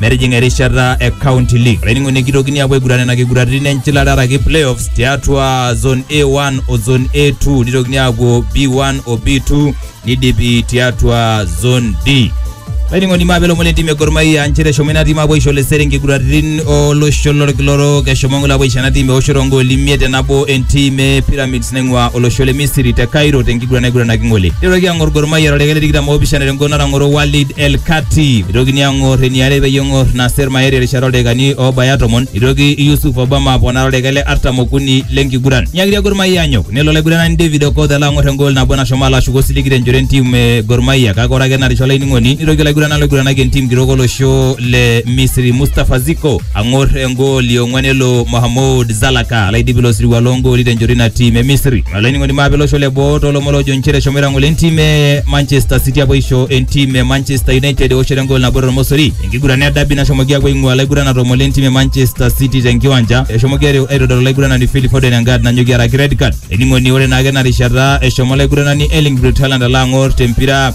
metijinga erishata e county league olainining'oni kitokini apuo aiguran nena kiguraritin enchilata araki playoffs tiatua zone a1 o zone a2 nitokini apuo b1 o b2 nidipi tiatua zone d laining'oni maape lomon lentim e Gor Mahia nchere eshomo ina tim apuo aisho lesere nkiguraritin olosho lorkila orok eshomo ng'ole apuo aisho ena tim eoshoto ongooli imiet tenabo entim e pyramids naing'ua olosho le Misri te Cairo tenkiguran naiguranaki ng'ole. Neitoki ang'or Gor Mahia toldaika le tikitam oopishana tenguton natang'oro Walid El Kati. Eitokini ang'or eniare peyie eng'or Nasser Maeri erishata oldaikani oobaya tomon. Eitoki Yusuf Obama aponaa toldaika le artam okuni le nkiguran. Nyiakitia Gor Mahia anyok nelo olaiguranani David Okoth alo ang'or engol nabo nashomo alo ashuku osiligi tenchoto entim e Gor Mahia kake ore ake enarisha olainining'oni neitoki olaiguranani oiguranaki entim kitok olosho le Misri Mustafa Ziko ang'or engooli ong'wan elo Mohamed Zalaka laidipi ilo sirua loongooli tenchoto ina tim e Misri. Olainining'oni maape olosho le boo toolomon loojo nchere eshomoita ng'ole entim e Manchester City apuo aisho entim e Manchester United eoshoto engool nabo tormosori. Enkiguran e dabi nashomoki apuo aing'ua laiguranak tomon lentim e Manchester City tenkiwanja. Eshomoki airo- aitodol olaiguranani Phil Foden engad nanyoki araki red card. Ening'oni ore naake ena rishata eshomo olaiguranani Erling Braut Haaland alo ang'or tempira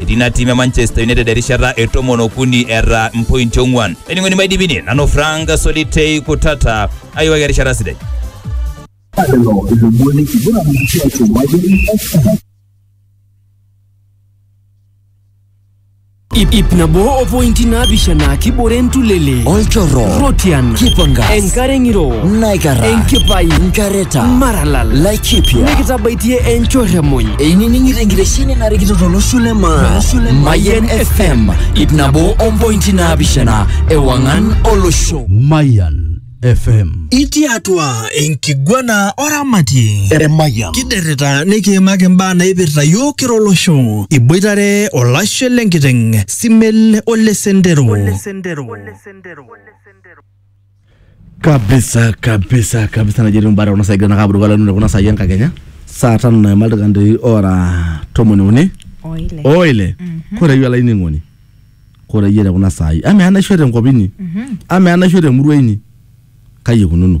Etii ina tiim e Manchester United erishata e tomon okuni eeta mpointi ong'uan. Ening'oni maidipini nanu Frank Solitei Kutata ayiwaki erishata sidai. Lelo ilomon enkiguran tiatua Mayian FM. Ip, ip nabo o pointi naapishana kibore entulele Olchorro. Rotian Kipangas. enkare ng'iro Naikara. Enkipai. Nkareta. Maralal. Lai kipya nikitabaitie enchorremuny einining'ito enkitesheni narikito tolosho le maa mayian fm ip nabo ompointi naapishana ewang'an olosho Mayan FM. itii atua enkiguana oramatie Emayian. kiderrita nikiimaki imbaa naipirta yiok kira olosho iboitare olashe lenkiteng simel ole sendero kabisa kabisa kabisa naji etiu mbata kuna saai egira aabulu kala nune kuna saai enkakenya saa tano naima ildaikani ora tomoni uni oile oile koreyie olainining'oni koreyie te kuna saai amaa enaisho tenkop inyi amaa enaisho temurua inyi kai ikununo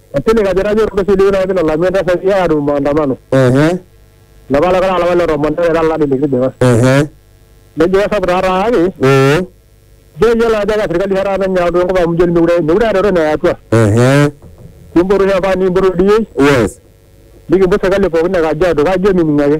Asili kajo etajo orgosi liu naa kinalamu entasati ya adu maandamano. Ehe. Lapa lekora lapa le tomon ore taa lari likitijing'a. Ehe. Nejo kesapuk taa taake. Oo. Ijo iyiolo ajo eka serikali taa taata enye enkop amu ijo mekure mekure eeta entoki naya atua. Ehe. Kimpotu shamba nikimpotu ildioi. Yes. Nikimput serikali pookin e Kajiado kake ijo mining ake.